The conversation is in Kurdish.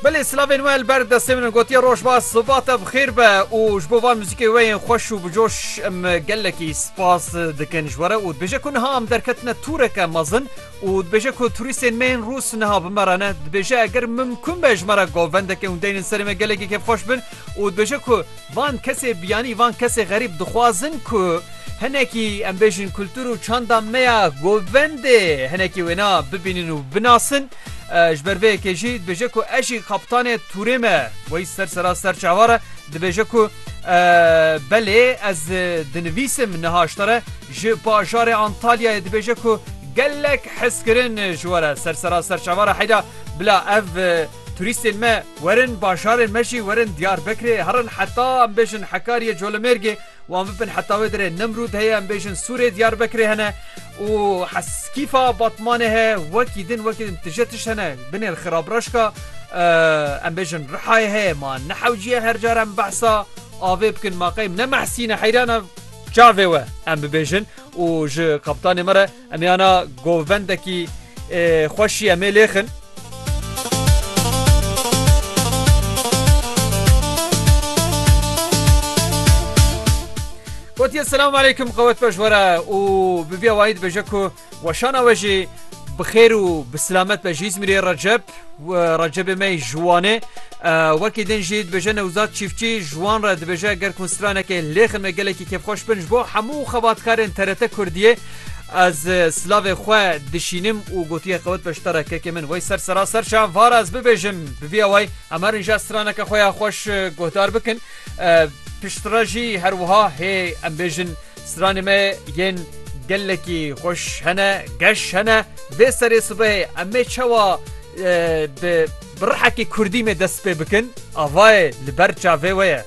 Belê silavên we li ber destê min in gotiye roj baş sibat e bixêr be û ji bo van muzîkê we yên xweş û bicoş em gelekî spas dikin ji were û dibêje ku niha em derketine tûreke mezin û dibêje ku turîstên me yên rûs niha bi me re ne dibêje eger mimkun be ji me re govendeke hûn deynin serê me gelekî kêfxweş bin û dibêje ku van kesê biyanî van kesê xerîb dixwazin ku hinekî em bêjin kultur û çanda me ya govendê hinekî wêna bibînin û binasin. Ji ber vê yekê jî dibêje ku ez jî kaptanê tûrê me wey ser sera ser çavar e dibêje ku belê ez dinivîsim niha ji te re ji bajarê Antalyayê dibêje ku gelek hizkirin ji were ser sera ser çavar e heyda bila ev Turîstên me werin bajarên me jî werin Diyarbekirê herin heta em bêjin Hekariyê Colemêrgê wan bibin heta wê dirê Nemrûd heye em bêjin Sûrê Diyarbekirê hene û Heskîfa Batmanê heye wekî din wekî din tije tişt hene binê li Xirabraşka em bêjin Rihayê heye ma nehewciye her car em behsa avê bikin ma qey ne mehsîne heyrana çavê we em bibêjin û ji kaptanê me re Em ê ana govendekî xweşî em ê lêxin. Gotiye selam aleykum qewet beş were û bi vî awayî dibêje ku weşana we jî bi xêr û bi silamet be ji Îzmîrê Recep Recepê me ji Wanê wekî din jî dibêje Newzad Çîfçî ji wan re dibêje ger konstranekê lêxin me gelekî kêfxweş bin ji bo hemû xebatkarên TRT Kurdiyê Ez silavê xwe dişînim û gotiye qewet beşdara kekê min wey ser sera ser şan var ez bibêjim bi vî awayî em herin jî ez straneke xwe ya xweş guhdar bikin piştre jî her wiha hê em bêjin stranê me yên gelekî xweş hene geş hene vê serê sibehê em ê çawa bi bi rihekî kurdî me dest pê bikin avayê li ber çavê we ye.